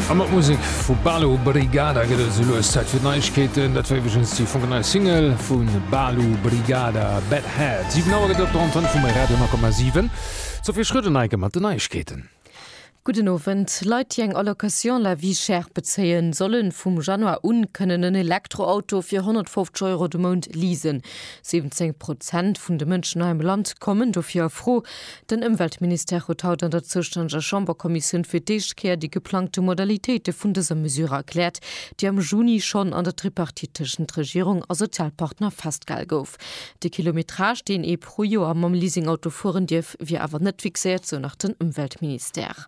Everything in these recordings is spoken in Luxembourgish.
A mat Musek vu Balu Brigada gëtt et esou lues Zäit fir d'Neiegkeeten. Dat war iwweregens déi fonkelnei Single vu Balu Brigada, Bad Head. 7 Auer gëtt et op der Antenn vum Radio 10,7. D'Sophie Schröder-Neigen mat den Neiegkeeten. Gudden Owend. Leit, déi eng Allocation La Vie Chère bezéien, solle vum Januar u kënnen en Elektroauto fir 150 Euro de Mount leasen. 17 Prozent vun de Mënschen hei am Land kommen dofir a Fro. Den Ëmweltministère huet haut an der zoustännege Chamberkommissioun fir d'éischt Kéier déi geplangte Modalitéite vun dëser Mesure erkläert, déi am Juni schonn an der Tripartite tëschent Regierung a Sozialpartner festgehal gouf. De Kilometrage, deen ee pro Joer mam Leasingauto fueren dierf, wier awer net fixéiert, sou nach den Ëmweltministère.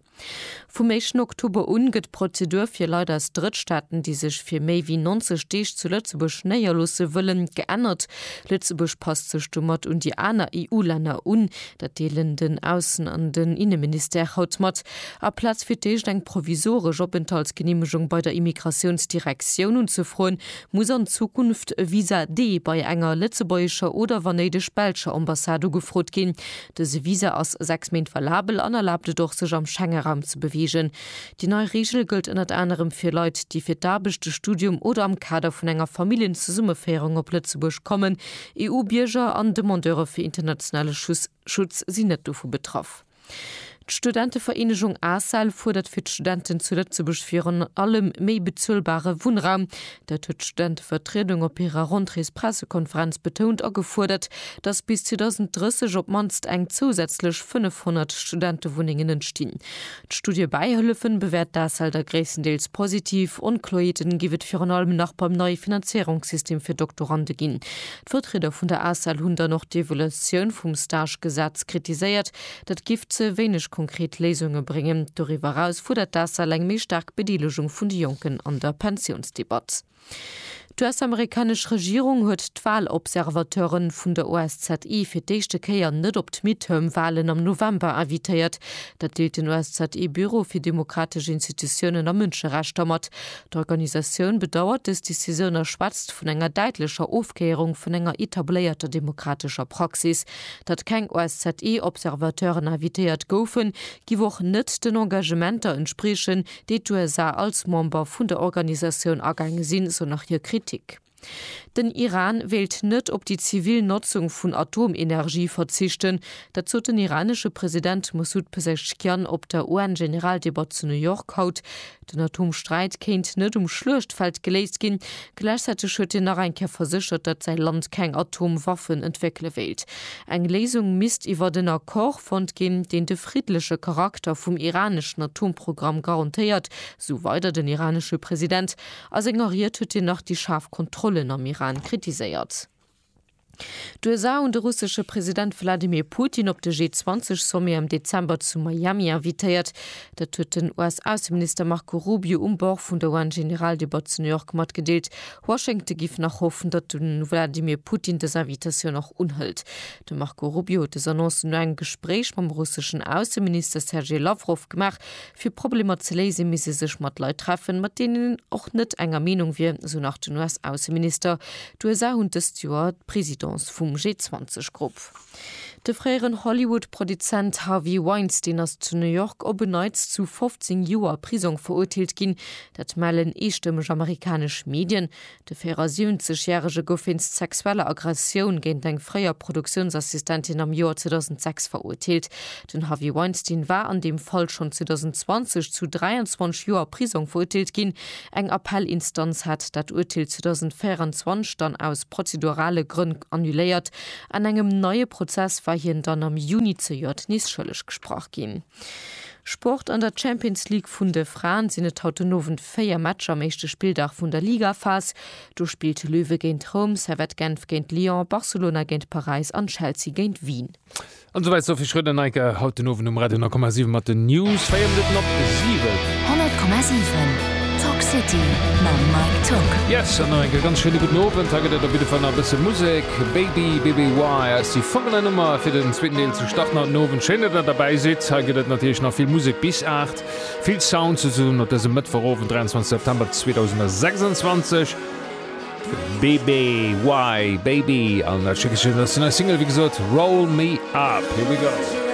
Vum éischten Oktober un gëtt d'Prozedur fir Leit aus Drëttstaaten, déi sech fir méi wéi 90 Deeg zu Lëtzebuerg néierloosse wëllen, geännert. Lëtzebuerg passt sech domat un déi aner EU-Länner un. Dat deelen den Aussen an den Inneministère haut mat. Aplaz fir d'éischt eng provisoresch Openthaltsgeneemegung bei der Immigratiounsdirektioun unzefroen, muss an Zukunft e Visa-D bei enger lëtzebuergescher oder, wann néideg, belscher Ambassade ugefrot ginn. Dëse Visa ass sechs Méint valabel an erlaabt et och, sech am Schengeraum ze beweegen. Déi nei Reegel gëllt ënnert anerem fir Leit, déi fir d'Aarbecht, de Studium oder am Kader vun enger Familljenzesummenféierung op Lëtzebuerg kommen. EU-Bierger an Demandeure fir internationale Schutz sinn net dovu betraff. D'Studentevereenegung ACEL fuerdert fir d'Studenten zu Lëtzebuerg virun allem méi bezuelbare Wunnraum. Dat huet d'Studentevertriedung op hirer Rentréespressekonferenz betount a gefuerdert, datt bis 2030 op d'mannst eng zousätzlech 500 Studentewunnengen entstinn. D'Studie Bäihëllefen bewäert d'ACEL da gréisstendeels positiv. Onkloeerten géif et virun allem nach beim neie Finanzéierungssystem fir Doktorande ginn. D'Vertrieder vun der ACEL hunn dann och d'Evoluoutioun vum Stagegesetz kritiséiert, Dat géif ze wéineg konkret Léisunge bréngen. Doriwwer eraus fuerdert d'ACEL eng méi staark Bedeelegung vun de Jonken an der Pensiounsdebatt. D'US-amerikanesch Regierung huet d'Walobservateure vun der OSZE fir d'éischte Kéier net op d'Midterm-Walen am November invitéiert. Dat deelt den OSZE-Büro fir demokratesch Institutiounen a Mënscherechter mat. D'Organisatioun bedauert dës Decisioun a schwätzt vun enger däitlecher Ofkéierung vun enger etabléierter demokratescher Praxis. Datt keng OSZE-Observateuren invitéiert goufen, giff och net den Engagementer entspriechen, déi d'USA als Member vun der Organisatioun agaange sinn, esou nach hir Kritik. Den Iran wéilt net op déi zivil Notzung vun Atomenergie verzichten, dat sot den iranesche President Mossoud Pezeshkian op der UN-Generaldebatt zu New York haut. Den Atomsträit kéint net um Schluechtfeld geléist ginn. Gläichzäiteg huet hien nach eng Kéier verséchert, datt säi Land keng Atomwaffen entwéckele wéilt. Eng Léisung misst iwwert en Accord fonnt ginn, deen de friddleche Charakter vum iraneschen Atomprogramm garantéiert, esou weider den iranesche President. A senger Ried huet hien nach déi schaarf Kontrollen am Iran kritiséiert. D'USA hunn de russesche President Wladimir Putin op de G20-Sommet am Dezember zu Miami invitéiert. Dat huet den US-Ausseminister Marco Rubio um Bord vun der UN-Generaldebatt zu New York matgedeelt. Washington giff nach hoffen, datt de Wladimir Putin dës Invitatioun och unhëlt. De Marco Rubio huet dës Annoncen no engem Gespréich mam russeschen Ausseminister Sergei Lawrow gemaach, Fir Problemer ze léisen, misst ee sech mat Leit treffen, mat deenen een och net enger Meenung wier, esou nach den US-Ausseminister. D'USA hunn dëst Joer d'Presidence vum G20-Grupp. De fréieren Hollywood-Produzent Harvey Weinstein ass zu New York op en Neits zu 15 Joer Prisong verurteelt ginn. Dat mellen eestëmmeg amerikanesch Medien. De 74 järege gouf wéinst sexueller Aggressioun géint eng fréier Produktiounsassistentin am Joer 2006 verurteelt. Den Harvey Weinstein war an deem Fall schonn 2020 zu 23 Joer Prisong verurteelt ginn. Eng Appellinstanz hat dat Urteel 2024 dann aus prozedurale Grënn annuléiert. An engem neie Prozess war hien dann am Juni zejoert nees schëlleg gesprach ginn. Sport, An der Champions League vun de Fraen sinn et haut den Owend 4 Matcher am éischte Spilldag vun der Ligaphas. Do spillt Löwe géint Roum, Servette Genf géint Lyon, Barcelona géint Paräis an Chelsea géint Wien. An esou weit Sophie Schröder, Neike haut den Owend um Radio 9,7 mat den News. Véier Minutten op 7. 100,7 Talk City mam Mike Tock. Yes, an nach eng Kéier ganz schéine gudden Owend. Hei gëtt et op jidde Fall nach e bësse Musek. Baby BBY ass déi folgend nei Nummer fir den zweeten Deel zu. Start nach den Owend, schéin datt der derbäi sidd. Hei gëtt et natierlech nach vill Musek bis 8, vill Sounds souzesoen op dësem Mëttwochowend 23 September 2026. BBY Baby an dat Stéckelchen ass déi nei Single, wéi gesot, Roll Me Up. Here we go.